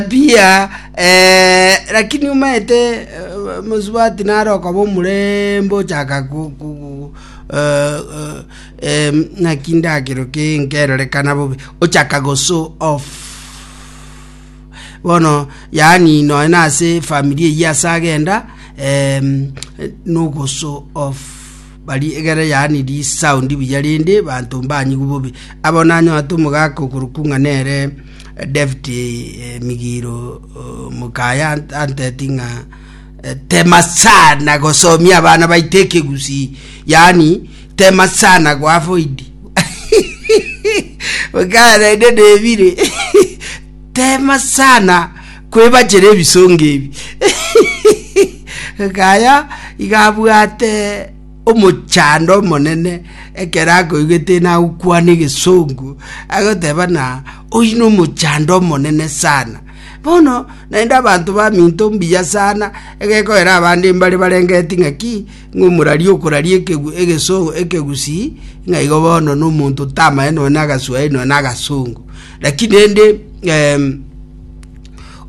mbiya, eh, lakini omaete eh, mosubati nare okaba omorembe ochaka ku- ku- ku- eh, eh, em, ng'aki ndakero ki nkerorekana bobe ochaka goso off bono yaani noe nase famiri eyio ase agenda em, nogoso off Baria egere yaani risaundi buya rende banto mbanyigwe bobe. Abo nanywanete omogaka okorokwa ng'a nere David Migiro Mukaya anteti ng'a tema sana gosomia abana baito ekegusi yaani tema sana goavoid Mukaya naende nebire Teema sana kwebachera ebisongo ebi. Gaya iga abwate omochando omonene ekero akoigwete ng'a nagokwana egesongo, agoteba ng'a oyio nomochando omonene sana. Bono naende abanto baminto mbuya sana, egekogera abande mbare barengeti ng'a ki, Ng'omorari okoraria ekegwi egesoogo ekegusii, ng'a igo bono nomonto tamae nonye nagaswahili nonye nagasongo. Lakini rende em,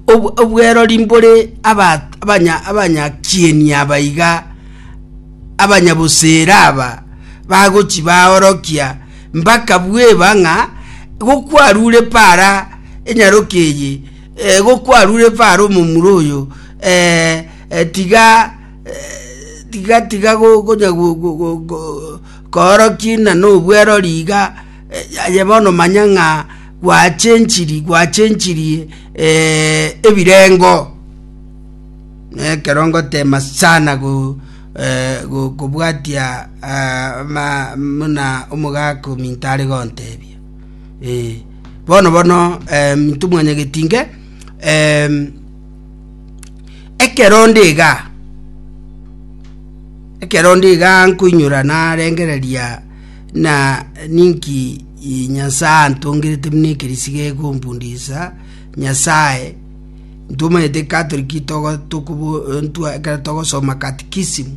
ob- obwerori mbore aba- abanya- abanyakieni aba iga abanyabosera aba bagochi baorokia mpaka bweba ng'a gokwarure para enyaroke eye eh, gokwarure para omomura oyo eh, eh, tiga tiga tiga gokonya kooroki ng'a nobwerori iga, aye bono manya ng'a gwachenchiri gwachenchiri ebirengo. Na ekero ngotema sana kobwatia buna omogaka ominto are gontebia, bono bono minto mwanyagetinke. Ekero onde iga, ekero onde iga nkoinyora narengereria na ninki i- Nyasae antongerete buna ekerisiga egombundisa Nyasae, ntomanyete Catholic togo- tokobo- ntwa- ekero togosoma katikisimu.